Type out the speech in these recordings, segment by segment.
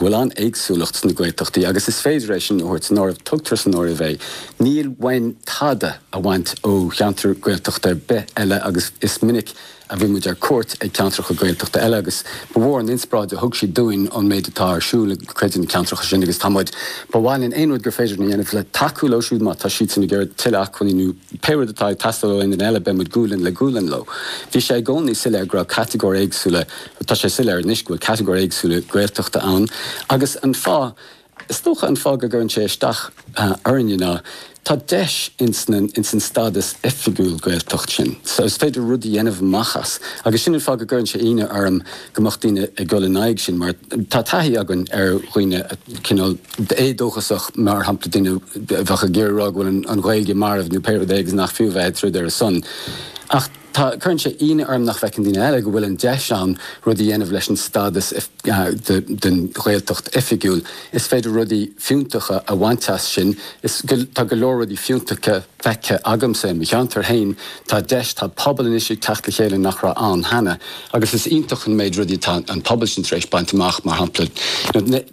bhfuil an-éagsúlacht sna Gaeltachtaí agus is féidir é sin a thabhairt san áireamh, tugtar san áireamh é, níl uainn tada a bhaint ó cheantar Gaeltachta ar bith eile agus is minic a bhí muid ar cuairt ag ceantracha Gaeltachta eile agus ba mhór an inspioráid a thug siad dúinn ón méid atá ar siúl ag cuid de na ceantracha sin agus tá muid. Ba mhaith linn aon rud gur féidir linn a dhéanamh le tacú leo siúd má tá siadsan ag iarraidh tuilleadh acmhainní nó Pé rud atá ag teastáil ó éinne eile beimid gualainn le gualainn leo. Bhí sé i gcónaí soiléir go raibh catagóirí éagsúla, tá sé soiléir anois go bhfuil catagóirí éagsúla Gaeltachta ann agus an fáth, is dócha an fáth go gcuireann sé isteach orainne ná tá deis ins na, ins an stádas oifigiúil Gaeltacht sin so is féidir rud a dhéanamh amach as agus sin an fáth go gcuireann sé ionadh orm go mbeadh daoine ag dul in aghaidh sin mar tá taithí againn ar dhaoine cineál éadóchasach mar shampla daoine a bheadh ag iarraidh rá go bhfuil an Ghaeilge marbh nó pé rud é agus nach fiú a bheith ag troid ar a son. Ach tá, cuireann sé ionadh orm nach bhfeiceann daoine eile go bhfuil an deis ann rudaí a dhéanamh leis an stádas den Ghaeltacht oifigiúil. Is féidir rudaí fiúntacha a bhaint as sin is tá go leor rudaí fiúntacha. feicthe agamsa i mo cheantar féin. Tá deis, tá pobal anois ag teacht le chéile nach raibh ann cheana agus is iontach an méid rudaí atá an pobal sin tar éis baint amach, mar shampla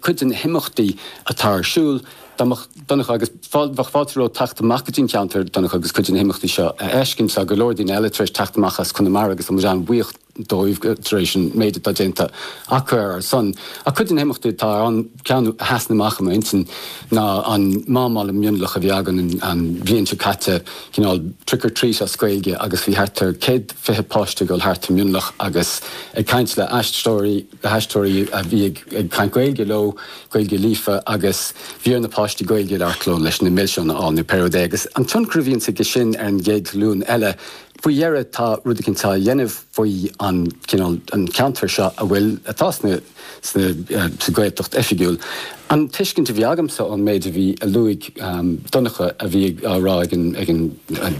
cuid de na himeachtaí atá ar siúl. Dá mbeadh Donncha agus bheadh fáilte romhat teacht amach go dtí an ceantar, Donncha, agus cuid de na himeachtaí seo a fheiscint. Tá go leor daoine eile tar éis teacht amach as Conamara agus tá muid an-bhuíoch. dóibh tar éis an méid atá déanta acu ar ár son. Ach cuid de na himeachtaí atá ar an gceann a sheasann amach i m'intinn ná an Mám Mhalla Mionlach a bhí againn an bhliain seo caite, cineál trick or treat as Gaeilge agus bhí thart ar céad fiche páiste ag dul thart i Mionlach agus ag caint le aistreoirí, le haisteoirí a bhí ag caint Gaeilge leo, Gaeilge líofa agus bhí ar na páistí Gaeilge a labhairt leo leis na milseáin a fháil nó pé rud é agus an tionchar a bhíonns ag sin ar an gcéad ghlúin eile. Faoi dheireadh tá rud eicint á dhéanamh faoi an cineál, an ceantar seo a bhfuil, atá sna, sna, sa Ghaeltacht oifigiúil. An tuiscint a bhí agamsa ón méid a bhí, a luaigh Donncha a bhí á rá ag an, ag an,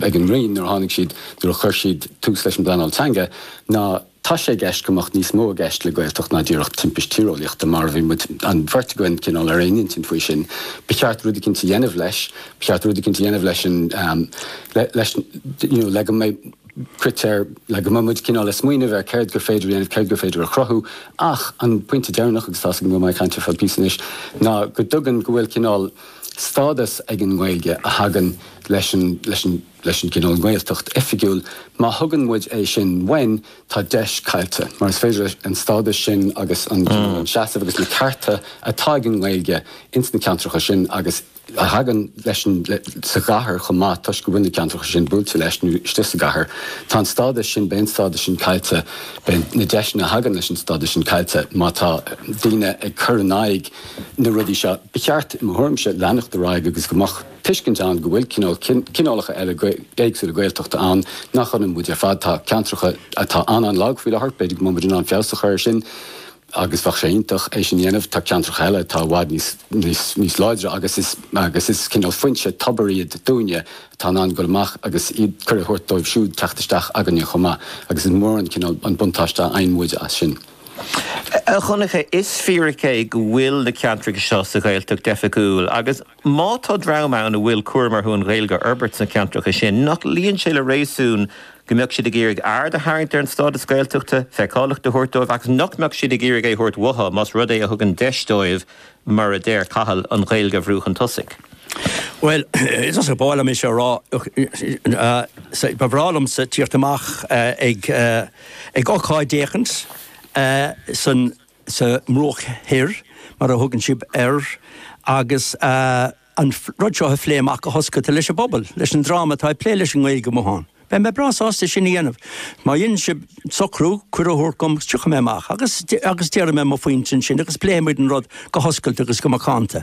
ag an Roinn nuair a tháinig siad, nuair a chuir siad tús leis an bpleanáil teanga ná, Tá sé i gceist go mbeadh níos mó i gceist le Gaeltacht ná díreach timpiste tíreolaíochta, mar a bhí muid, an bheirt againn, cineál ar aon intinn faoi sin. Ba cheart rud eicínt a dhéanamh leis. Ba cheart rud eicínt a dhéanamh leis an, leis an, you know, le go mbeidh critéir, le go mbeidh muid cineál ag smaoineamh ar céard gur féidir a dhéanamh, céard gur féidir a chruthú. Ach an pointe deireanach, agus tá's agam go raibh mé ag caint ar feadh píosa anois, ná go dtugann, go bhfuil cineál stádas ag an nGaeilge a thagann leis an, leis an, leis an gcineál nGaeltacht oifigiúil, má thugann muid é sin uainn, tá deis caillte, mar is féidir an stádas sin agus an cineál, an seasamh agus na cearta atá ag an nGaeilge ins na ceantracha sin agus a thagann leis an, sa gcathair chomh maith toisc go bhfuil na ceantracha sin buailte leis nó istigh sa gcathair, tá an stádas sin, beidh an stádas sin caillte, beidh na deiseanna a thagann leis an stádas sin caillte má tá daoine ag cur in aghaidh na rudaí seo. Ba cheart, i mo thuairimse, leanacht ar aghaidh agus go mbeadh. tuiscint ann go bhfuil cineálacha eile éagsúla Gaeltachta ann nach ionann muid ar fad. Tá ceantracha atá an-an-lag faoi láthair, b'fhéidir go mbeadh muid in ann feabhas a chur air sin agus bheadh sé iontach é sin a dhéanamh. Tá ceantracha eile atá i bhfad níos láidre agus is cineál foinse tobair iad dúinne atá in ann dul amach agus cuireadh a thabhairt dóibh siúd teacht isteach againne chomh maith agus is mór an cineál an buntáiste a fhaigheann muid as sin. A Dhonncha, is fíric é go bhfuil na ceantracha seo sa Ghaeltacht oifigiúil agus. Má tá dream ann a bhfuil cúram orthu an Ghaeilge a fhorbairt sna ceantracha sin, nach luíonn sé le réasún go mbeadh siad ag iarraidh aird a tharraingt ar an stádas Gaeltachta, feiceálacht a thabhairt dóibh agus nach mbeadh siad ag iarraidh é a thabhairt uathu más rud é a thugann deis dóibh, mar a deir Cathal, an Ghaeilge a bhrú chun tosaigh? Bhuel, is an-spáráilte dom é seo a rá. Ba bhreá liomsa tíocht amach ag ocáid éicint san. sa mBruach Thoir, mar a thugann sibh air, agus an rud seo a phlé amach go hoscailte leis an bpobal, leis an dream atá ag plé leis an nGaeilge amuigh ann. Beidh mé breá sásta sin a dhéanamh. Má dhéanann sibh socrú, cuireadh a thabhairt dom, agus tiocfaidh mé amach, agus, agus déarfaidh mé mo phointe ansin, agus pléifimid an rud go hoscailte agus go macánta.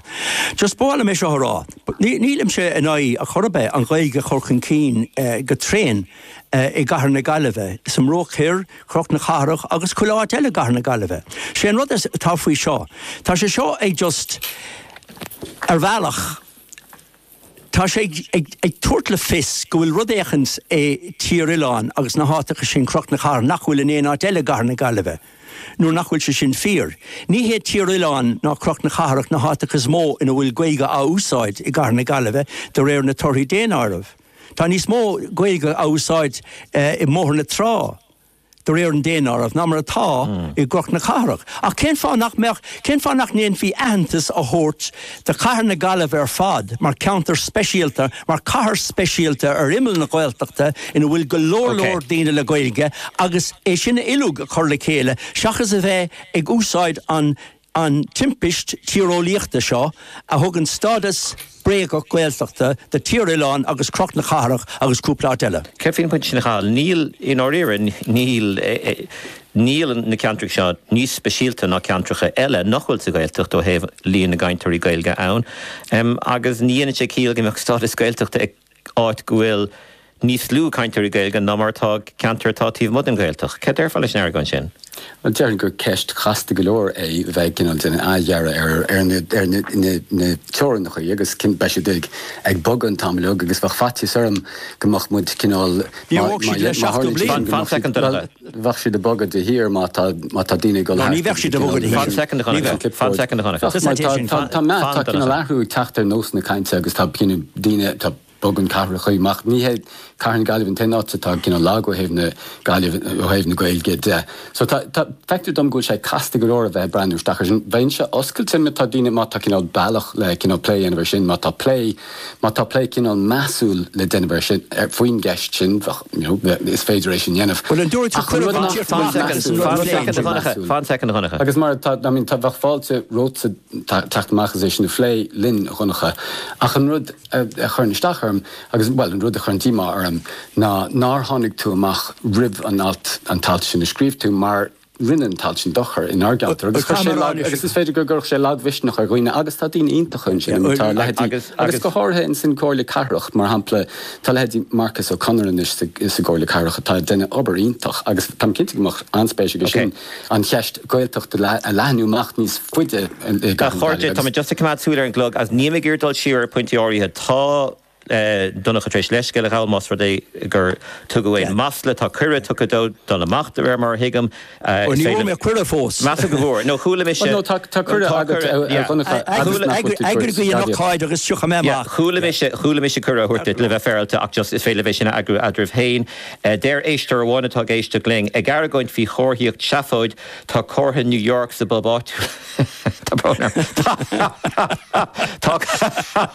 Just ba mhaith liom é seo a rá. Ní, nílimse in aghaidh ar chor ar bith an Ghaeilge a chur chun cinn go tréan i gCathair na Gaillimhe, sa mBruach Thoir, Cnoc na Cathrach agus chuile áit eile i gCathair na Gaillimhe. Sé an rud atá faoi seo, tá sé seo ag just, ar bhealach, tá sé ag tabhairt le fios go bhfuil rud éicint i Tír Oileáin agus na háiteacha sin, Cnoc na Cathrach, nach bhfuil in aon áit eile i gCathair na Gaillimhe. Nuair nach bhfuil sé sin fíor. Ní hé Tír Oileáin ná Cnoc na Cathrach na háiteacha is mó ina bhfuil Gaeilge á úsáid i gCathair na Gaillimhe de réir na torthaí daonáirimh. Tá níos mó Gaeilge á úsáid i mBóthar na Trá, de réir an daonáireamh, ná mar atá i gCnoc na Cathrach. Ach cén fáth nach mbeadh? Cén fáth nach ndéanfaí aitheantas a thabhairt do chathair na Gaillimhe ar fad mar cheantar speisialta, mar chathair speisialta ar imeall na Gaeltachta ina bhfuil go leor leor daoine le Gaeilge agus é sin uiliug a chur le chéile seachas a bheith ag úsáid an an timpiste tíreolaíochta seo a thugann stádas bréagach Gaeltachta do Tír Oileán agus Cnoc na Cathrach agus cúpla áit eile. Céard faoin bpointe sin, a Chathail? Níl, i ndáiríre, níl, níl na ceantracha seo níos speisialta ná ceantracha eile nach bhfuil sa Ghaeltacht ó thaobh líon na gcainteoirí Gaeilge ann, agus ní dhéanann sé ciall go mbeadh stádas Gaeltachta ag. áit go bhfuil níos lú cainteoirí Gaeilge ná mar atá i gceantair atá taobh amuigh den Ghaeltacht. Céard déarfá leis an argóint sin? Bhuel, déarfainn gur ceist chasta go leor é bheith cineál ag déanamh athdhearadh ar na teorainneacha agus cineál beidh siad ag bogadh an t-am uilig agus bheadh faitíos orm go mbeadh muid cineál mar a tharla sé. Fan soicind, a Dhonncha. bheadh siad ag bogadh de shíor má tá má tá daoine ag dul No, ní thart bheadh agus siad a cineál bhogadh de shíor. Ní bheadh. Ach mar tá tá tá meath tá cineál athrú ag teacht ar nósanna cainte agus tá cineál daoine tá bogann cathracha amach. Ní hé cathair na Gaillimhe an t-aon áit atá cineál lag ó thaobh na Gaillimhe ó thaobh na Gaeilge de. So tá tá feictear dom go bhfuil sé casta go leor a bheith ag breathnú isteach ar sin. Bheinn-se oscailte má tá daoine má tá cineál bealach le cineál plé a dhéanamh ar sin má tá plé Má tá plé cineál measúil le déanamh ar sin, faoin gceist sin, bheadh, you know, is féidir é sin a dhéanamh. Bhuel, an dtabharfaidh tú cuireadh an tír fáilte agus an rud phlé an tír fáilte. Fan soicind, a Dhonncha. Agus mar, I mean, tá, bheadh fáilte romhatsa teacht amach is é sin a phlé linn, a Dhonncha. Ach an rud a chuireann isteach orm agus, bhuel, an rud a chuireann díomá orm ná nár tháinig tú amach roimh an alt, an t-alt sin a scríobh tú mar, Rinne an t-alt sin dochar inár gceantar agus chuir sé lag agus is féidir go gcuirfeadh sé lagmhisneach ar dhaoine agus tá daoine iontacha ansin ina bhfuil leithéidí agus go háirithe insan gComhairle Cathrach mar shampla tá leithéidí Marcus Ó Conaire anois sa gComhairle Cathrach atá ag déanamh obair iontach agus táim cinnte go mbeadh an-spéis aige sin an cheist Gaeltachta a leathnú amach níos faide i gCathair na Gaillimhe agus. Tá mé just ag coimeád súil ar an gclog agus níl mé ag iarraidh dul siar ar pointí áirithe. Tá. Donncha tar éis leithscéal a ghabhail más rud é gur tugadh aon mhasla. Tá cuireadh tugtha dó dul amach de réir mar a thuigim. Ó ní bhfuair mé cuireadh fós. Measaim go bhfuair. Nó chuala mise. Nó tá cuireadh agat a Dhonncha agus nach bhfuil tú ag tabhairt faoi staidéar. Eagraigh an ócáid agus tiocfaidh mé amach. Chuala mise, chuala mise cuireadh á thabhairt duit le bheith féarailte ach just is féidir libh é sin a eagrú eadraibh féin. Deir éisteoir amháin atá ag éisteacht linn, ag argóint faoi chomharthaíocht seafóid, tá comhartha New York sa bpub áitiúil. Tá brón orm. Tá.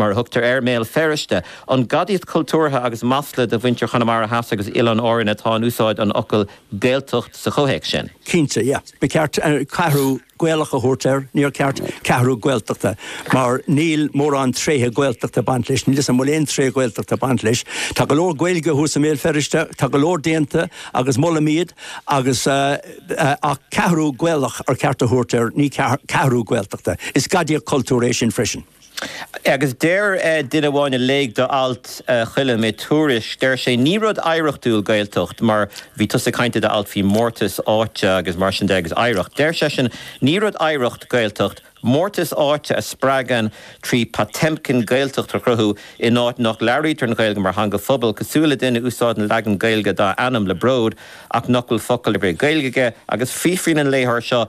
mar a thugtar air, i mBéal Feirste. An gadaíocht chultúrtha agus masla do mhuintir Chonamara Theas agus Oileáin Árann atá in úsáid an fhocail 'Gaeltacht' sa chomhthéacs sin. Cinnte, yeah. Ba cheart 'Ceathrú Gaelach' a thabhairt air, níor cheart 'Ceathrú Gaeltachta', mar níl mórán tréithe Gaeltachta ag baint leis, níl 'fhios a'm an bhfuil aon tréith Ghaeltachta ag baint leis. Tá go leor Gaeilge thuas i mBéal Feirste, tá go leor déanta agus molaim iad agus eh, ach 'Ceathrú Gaelach' ba cheart a thabhairt air, ní 'Ceathrú Gaeltachta'. Is gadaíocht chultúrtha é sin freisin. Agus deir duine amháin a léigh d'alt a Choilm i Tuairisc, deir sé ní rud oidhreachtúil Gaeltacht mar bhí tusa ag caint i d'alt faoi mórtas áite agus mar sin de agus oidhreacht. Deir seisean ní rud oidhreacht Gaeltacht, mórtas áite a spreagadh trí Potemkin Gaeltacht a chruthú in áit nach labhraítear an Ghaeilge mar theanga phobail, cosúil le duine a úsáideann leagan Gaeilge dá ainm le bród ach nach bhfuil focal ar bith Gaeilge aige. Agus fiafraíonn an léitheoir seo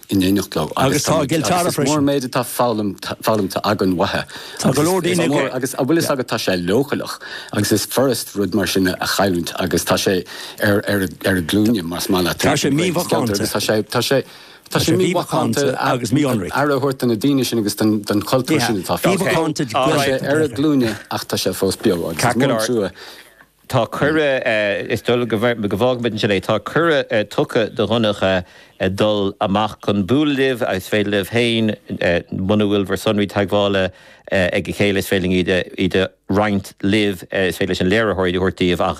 in éineacht leo agus tá muid agus is mór an méid atá foghlamtha againn uathu Tá go leor daoine ag agus a bhfuil fhios agat tá sé leochaileach agus is furasd rud mar sin a chailliúint agus tá sé ar ar ar a glúine más maith leat Tá sé mímhacánta agus tá sé tá sé Tá sé mímhacánta agus mionraí. aire a thabhairt do na daoine sin agus don don chultúr sin atá fágtha Mímhacánta Tá sé ar a glúine ach tá sé fós beo agus is mór an trua Tá cuireadh, is dóigh go bhfágfaimid ansin é, tá cuireadh tugtha do Dhonncha dul amach chun bualadh libh agus is féidir libh féin, muna bhfuil bhur sonraí teagmhála ag a chéile, is féidir linn iad a roinnt libh, is féidir leis an léiritheoir iad a thabhairt daoibh ach,